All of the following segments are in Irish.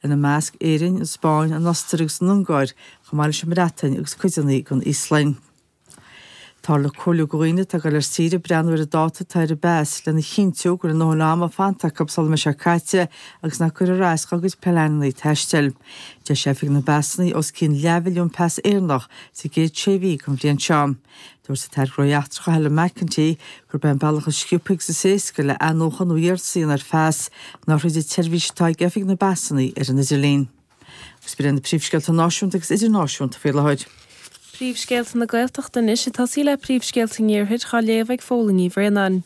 ina measc Éirinn, an Spáinn, an Ostair agus an Ungáir, chomh maith leis an mBreatain agus cuideanna den Íoslainn. Táthar ag comhairliú go dhaoine atá ag dul ar saoire breathnú ar an dáta atá ar an bpas lena chinntiú go bhfuil a ndóthain ama fanta acu sula mbeidh sé caite agus nach gcuirfear as dá gcuid pleananna taistil. D'eisigh Oifig na bPasanna os cionn leathmhilliún pas Éireannach sa gcéad sé mhí den bhliain seo. Dúirt an tAire Gnóthaí Eachtracha Helen McEntee gurb é an bealach is sciobtha agus is éasca le athnuachan nó iarraidh ar phas ná tríd an tseirbhís atá ag Oifig na bPasanna ar an idirlíon. Agus b'in iad na príomhscéalta náisiúnta agus idirnáisiúnta faoi láthair. Príomhscéalta na Gaeltachta anois ag tosaí le príomhscéalta an Iarthair á léamh ag Póilín Ní Bhraonáin.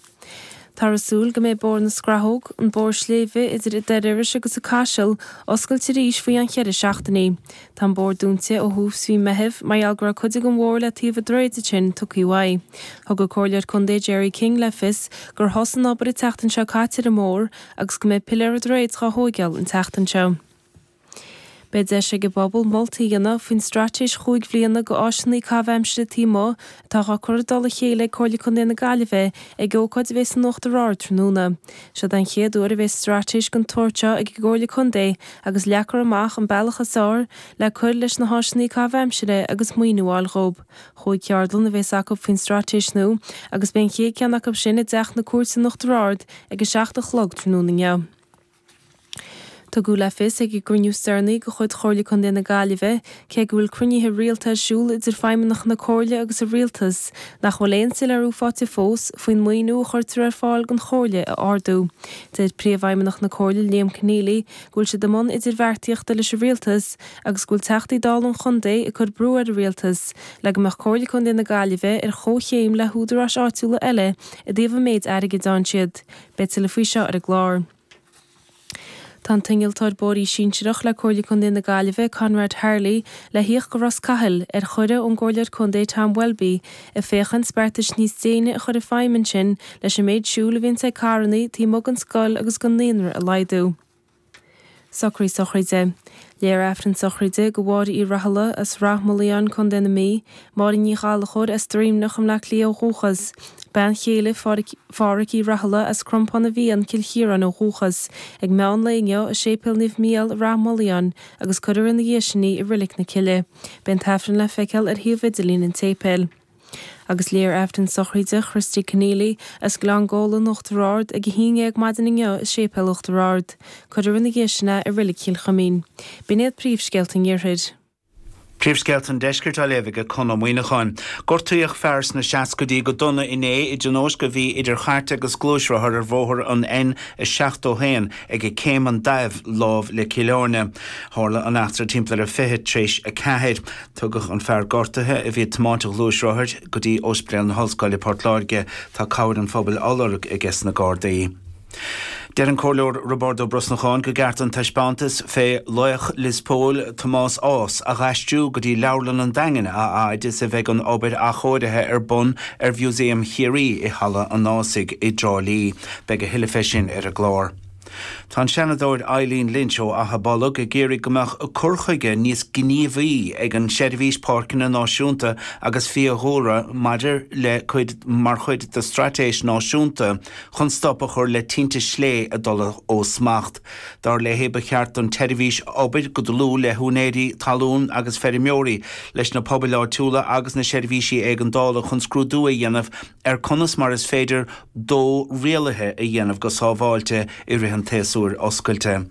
Tá ar súil go mbeidh Bóthar na Scrathóg, an bóthar sléibhe idir Doire Iorrais agus an Caiseal, oscailte arís faoi ann cheithre seachtainí. Tá an bóthar dúinte ó thús mhí Meitheamh mar gheall go raibh cuid den mbóthar le taobh an droichid ansin tugtha uaidh. Thug an Comhairleoir Contae Gerry King le fios gur thosaigh an obair an tseachtain seo caite ar an mbóthar agus go mbeidh piléir an droichid dhá thóigeáil an tseachtain seo. Beidh deis ag an bpobal moltaí a dhéanamh faoin straitéis chúig bhliana d'áiseanna caitheamh aimsire taobh amuigh atá á cur i dtoll a chéile ag Comhairle Contae na Gaillimhe ag ócáid a bheidh san Uachtar Ard tráthnóna. Siod an chéad uair a bheidh straitéis den tsórt seo ag an gComhairle Contae agus leagfar amach an bealach is fearr le cur leis na háiseanna caitheamh aimsire agus maoiniú a fháil dhóibh. Chúig cheardlann a bheas acu faoin straitéis nua agus beidh an chéad cheann acu sin i dTeach na Cúirte san Uachtar Ard ag a seacht a chlog tráthnóna inniu. Tugadh le fios ag an gcruinniú is deireanaí de chuid Chomhairle Contae na Gaillimhe, cé go bhfuil cruinnithe rialta ar siúl idir feidhmeannacha na Comhairle agus an Rialtas, nach bhfuil aon soiléiriú faighte fós faoin maoiniú a chuirtear ar fáil don Chomhairle a ardú. Deir Príomhfheidhmeannach na Comhairle Liam Conneally go bhfuil siad i mbun idirbheartaíochta leis an Rialtas agus go bhfuil Teachtaí Dála an Chontae ag cur brú ar an Rialtas le go mbeadh Comhairle Contae na Gaillimhe ar chomhchéim le húdaráis áitiúla eile i dtaobh an méid airgid a fhaigheann siad. Beidh tuilleadh faoi seo ar an gclár. Tá an t-innealtóir bóithrí sinsearach le Comhairle Contae na Gaillimhe, Conrad Harley, le thíocht go Ros Cathail, ar chuireadh ón gComhairleoir Contae Tom Welby, ag féachaint beartais níos déine a chur i feidhm ansin leis an méid siúil a bhíonns ag carrannaí taobh amuigh den scoil agus den naíonra a laghdú. Socraí sochraide. Léifear Aifreann sochraide go Mháire Uí Rathaille as Ráth Moliain, Co. na Mí, Máire Ní Ghallchóir as Droimneanach i mBleá Cliath ó dhúchas, bean chéile Phádraic Uí Rathaille as Crompán na bhFiann, Cill Chiaráin ó dhúchas, ag meán lae inniu i Séipéal Naomh Micheál i Ráth Moliain agus cuirfear ina dhiaidh sin í i Rilic na Cille. Beidh an tAifreann le feiceáil ar shuíomh idirlín an tséipéil. Agus léifear Aifreann sochraide Christy Conneely as Gleann Gabhla in Uachtar Ard ag a haon déag maidin inniu i Séipéal Uachtar Ard, cuirfear ina dhiaidh sin é i Reilig Chill Chuimín. B'in iad príomhscéalta an Iarthair. Príomhscéalta an Deiscirt á léamh aige Conn Ó Muíneacháin. Gortaíodh fear sna seascaidí go dona inné i dtionóisc a bhí idir chairt agus gluaisrothar ar bhóthar an N71 aige Céim an Daimh láimh le Cill Airne. Tharla an eachtra timpeall ar a 20 tar éis a ceathair. Tugadh an fear gortaithe, a bhí ag tiomáint an ghluaisrothair, go dtí Óispidéal na hOllscoile i Port Láirge. Tá cabhair an phobail á lorg aige sna Gardaí. Deir an Comhairleoir Roibeárd Ó Brosnacháin gur ceart an taispeántas fé laoch Lios Póil, Tomás Ághas, a dh'aistriú go dtí Leabharlann an Daingin a fhaid is a bheidh an obair athchóirithe ar bun ar Mhúsaem Chiarraí i Halla an Ághasaigh i dTrá Lí. Beidh a thuilleadh fé sin ar an gclár. Tá an Seanadóir Eileen Lynch ó Achadh Bolg ag iarraidh go mbeadh cur chuige níos gníomhaí ag an tSeirbhís Páirceanna Náisiúnta agus Fiadhúlra maidir le cuid mar chuid de straitéis náisiúnta chun stop a chur le tinte slé ag dul ó smacht. Dar léi ba cheart don tseirbhís obair go dlúth le húinéirí talún agus feirmeoirí, leis na pobail áitiúla agus na seirbhísí éigeandála chun scrúdú a dhéanamh ar conas mar is féidir dó rialaithe a dhéanamh go sábháilte i rith an tséasúir oscailte.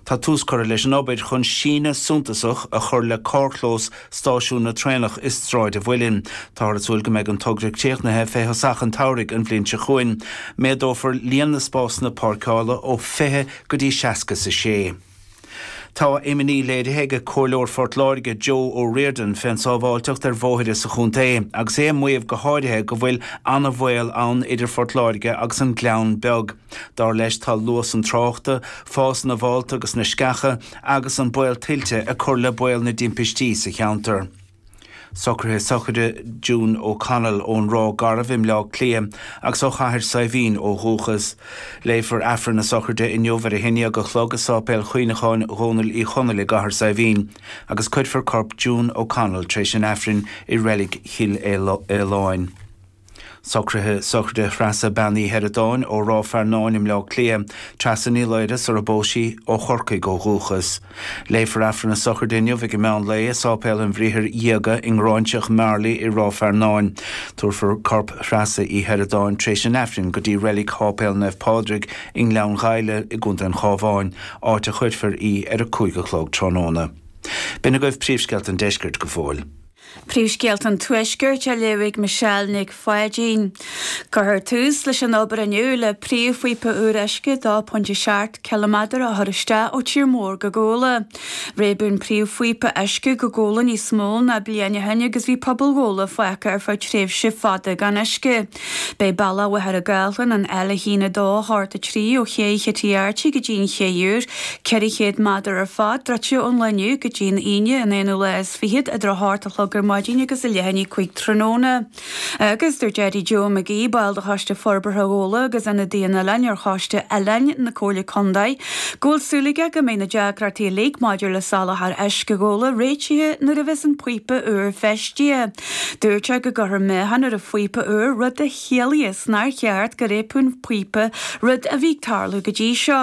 Tá tús curtha leis an obair chun síneadh suntasach a chur le carrchlós stáisiún na traenach i Sráid an Mhuilinn. Táthar ag súil go mbeidh an togra críochnaithe fé thosach an tsamhraidh an bhliain seo chugainn. Méadófar líon na spásanna páirceála ó 20 go dtí 66. Tá imní léirithe ag Comhairleoir Phort Láirge Joe O'Riordan fén sábháilteacht ar bhóithre sa chontae agus é ag maíomh go háirithe go bhfuil ana bhaol ann idir Phort Láirge agus an Gleann Beag. Dar leis tá luas an tráchta, fás na bhfálta agus na sceacha agus an baol tuilte ag cur le baol na dtimpistí sa cheantar. Socruithe sochraide June O'Connell ón Ráth Garbh i mBleá Cliath agus ó Chathair Saidhbhín ó dhúchas. Léifear Aifreann na sochraide inniu ar a haon déag a chlog i Sáipéal Chuimhneacháin Dhónaill Uí Chonaill i gCathair Saidhbhín agus cuirfear corp June O'Connell tar éis an Aifrinn i Reilig Chill Fhaoláin. Socruithe sochraide Threasa Bean Uí Sheireadáin ó Ráth Fearnáin i mBleá Cliath, Treasa Ní Laoire sar a bpós sí, ó Chorcaigh ó dhúchas. Léifear Aifreann na sochraide inniu aige meán lae i Sáipéal an Bhriathair Dhiaga i nGráinseach Mharlaí i Ráth Fearnáin. Tabharfar corp Threasa Uí Sheireadáin tréis an Aifrinn go dtí reilig Sháipéal Naomh Pádraig i nGleann Ghaibhle i gContae an Chábháin, áit a chuirfear í ar a cúig a chlog tráthnóna. B'in agaibh príomhscéalta an deiscirt go fóill. Príomhscéalta an Tuaiscirt á léamh ag Michelle Nic Pháidín. Cuirfear tús leis an obair inniu le príomhphíopa úr uisce 2.7 ciliméadar a chur isteach ó tír mór go Gabhla. Réabadh an príomhphíopa uisce go Gabhla níos mó ná bliain ó shin agus bhí pobal Ghabhla fágtha ar feadh tréimhse fada gan uisce. Beidh bealach Mhachaire Gathlán an L1283 ó ché Chití Airty go dtí an ché úr, 400 méadar ar fad, druidte ón lae inniu go dtí an Aoine an aonú lá is fichead, idir a hocht a chlog ar maidin agus leath i ndiaidh a cúig tráthnóna. Agus dúirt Eddie Joe McGee, ball de Choiste Forbartha Ghabhla agus Ionadaí an Oileáin ar Choiste Oileáin na Comhairle Contae, go bhfuil súil aige go mbeidh na deacrachtaí uilig maidir le soláthar uisce Ghabhla réitithe nuair a bheas an píopa úr feistithe. Dúirt sé go gcuirfear meáchan ar an phíopa úr, rud a chiallaíos nár cheart go réabfadh an píopa rud a bhí ag tarlú go dtí seo.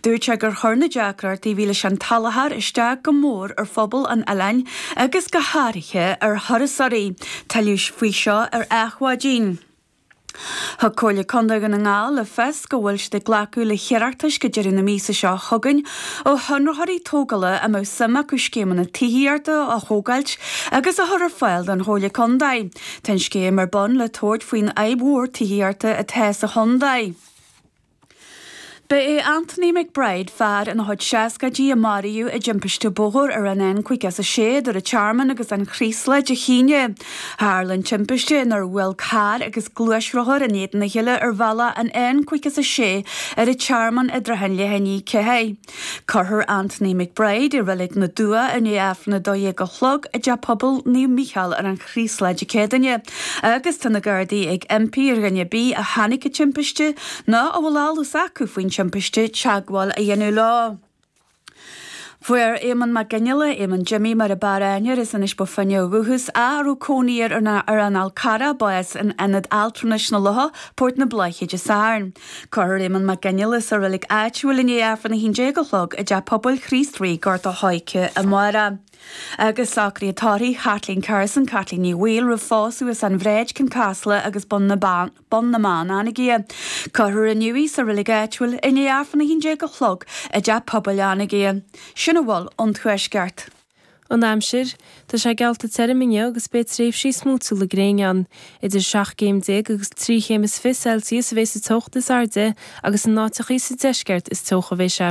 Dúirt sé gur chuir na deacrachtaí a bhí leis an tsoláthar isteach go mór ar phobal an oileáin agus go háirithe ar thurasóirí. Tuilleadh faoi seo ar Adhmhaidin. Thug Comhairle Contae Dhún na nGall le fios go bhfuil siad ag glacadh le hiarratais go deireadh na míosa seo chugainn ó chonraitheoirí tógála a mbeadh suim acu scéimeanna tithíochta a thógáilt agus a chur ar fáil don Chomhairle Contae. Tá an scéim ar bun le tabhairt faoin fhadhb mhór tithíochta atá sa chontae. Ba é Anthony McBride, fear ina chuid seascaidí, a maraíodh i dtimpiste bóthair ar an N56 idir an Tearmann agus an Chraoslach Dé hAoine. Tharla an timpiste nuair a bhuail carr agus gluaisrothar in éadan a chéile ar bhealach an N56 ar an Tearmann i dtrátha an leath i ndiaidh a ceathair. Cuirfear Anthony McBride i Reilig na dTuath i ndiaidh Aifreann 12 a chlog i dTeach Pobail Naomh Mícheál ar an Chraoslaigh Dé Céadaoine agus tá na Gardaí ag impí ar dhuine ar bith a chonaic an timpiste nó a bhfuil eolas acu faoin timpiste teagmháil a dhéanamh leo. Fuair Éamonn Mag Fhionnaile, Éamonn Jimmy mar ab fhearr aithne air as Inis Bó Finne ó dhúchas, a raibh cónaí air ar an Fhál Carrach, bás in Ionad Altranais na Locha, Port na Bláiche Dé Sathairn. Cuirfear Éamonn Mag Fhionnaile sa reilig áitiúil i ndiaidh Aifreann 11 a chlog i dTeach Pobail Chríost Rí, Gort an Choirce amárach. Agus socruithe tórraimh Chaitlín Carson, Caitlín Ní Bhaoill, roimh phósadh as an Bhráid, Cionn Caslach agus Bun na mBeann, Anagaire. Cuirfear inniu í sa reilig áitiúil i ndiaidh Aifreann 11 a chlog i dTeach Pobail Anagaire. Sin a bhfuil ón Tuaisceart. An aimsir, Tá sé geallta tirim inniu agus beidh tréimhsí smúitiúla gréine ann. Idir seacht gcéim déag agus trí chéim is fiche Celsius a bheidh sa teocht is airde agus in áiteachaí sa deisceart is teocha a bheidh sé.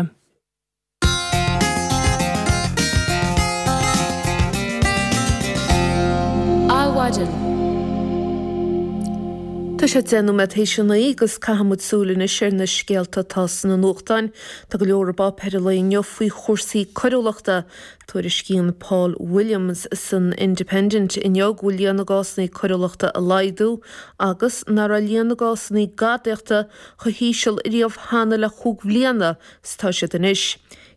Adhmhaidin, Tá sé deich nóiméad théis a naoi agus caithfidh muid súil anois ar na scéalta atá sna nuachtáin. Tá go leor i bpáipéir an lae inniu faoi chúrsaí coiriúlachta. Tuairiscíonn Paul Williams san Independent inniu go bhfuil líon na gcásanna coiriúlachta ag laghdú agus nach raibh líon na gcásanna gadaíochta chomh híseal riamh cheana le cúig bliana is atá siad anois.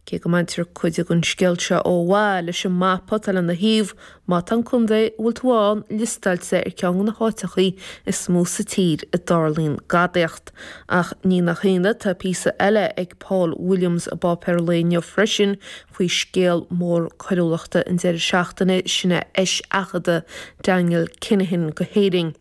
Cé go mbaintear cuid den scéal seo ó mhaith leis an mapa atá lena thaobh, Má tá an contae a bhfuil tú ann liostáilte ar cheann de na háiteachaí is mó sa tír a dtarlaíonn gadaíocht. Ach ní nach ionadh, tá píosa eile ag Paul Williams i bpáipéar an lae inniu freisin faoi scéal mór coiriúlachta an deireadh seachtaine sin é eiseachadadh Daniel Kinahan go hÉirinn.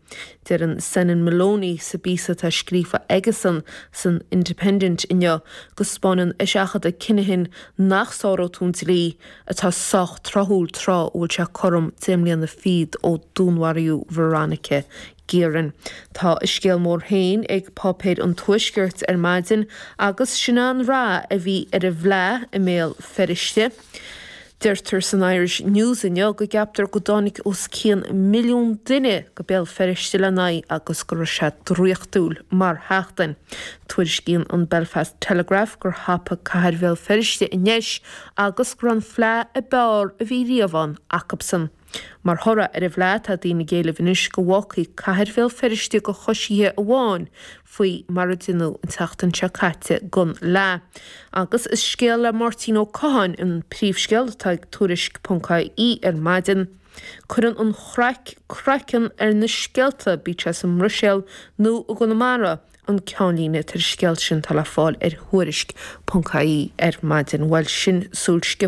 Deireann Senan Molony sa bpíosa atá scríofa aige san san Independent inniu go spáineann eiseachadadh Kinahan nach sáróidh tú an dlí atá sách tráthúil tráth a bhfuil sé cothrom deich mbliana fichead ó dúnmharaíodh Veronica Guerin. Tá a scéal mór féin ag páipéir an Tuaiscirt ar maidin agus sin é an rath a bhí ar an bhFleadh i mBéal Feirste. Deirtear san Irish News inniu go gceaptar go dtáinig os cionn milliún duine go Béal Feirste lena haghaidh agus go raibh sé draíochtúil mar sheachtain. Tuairiscíonn an Belfast Telegraph gur thapaigh cathair Bhéal Feirste an deis agus go raibh an fleadh a b'fhearr a bhí riamh ann acubsan. Mar thoradh ar an bhfleadh tá daoine ag éileamh anois go bhfágfaí cathair Bhéal Feirste go coisithe amháin faoi mar a deineadh an tseachtain seo caite gon fhleadh. Agus is scéal le Máirtín Ó Catháin an príomhscéal atá ag Tuairisc ponc IE ar maidin. Cuireann an chraic craiceann ar na scéalta bíodh sé sa mBruiséal nó i gConamara, an ceannlíne atá ar an scéal sin atá le fáil ar Thuairisc. ie ar maidin. Bhuel, sin súil sciobtha.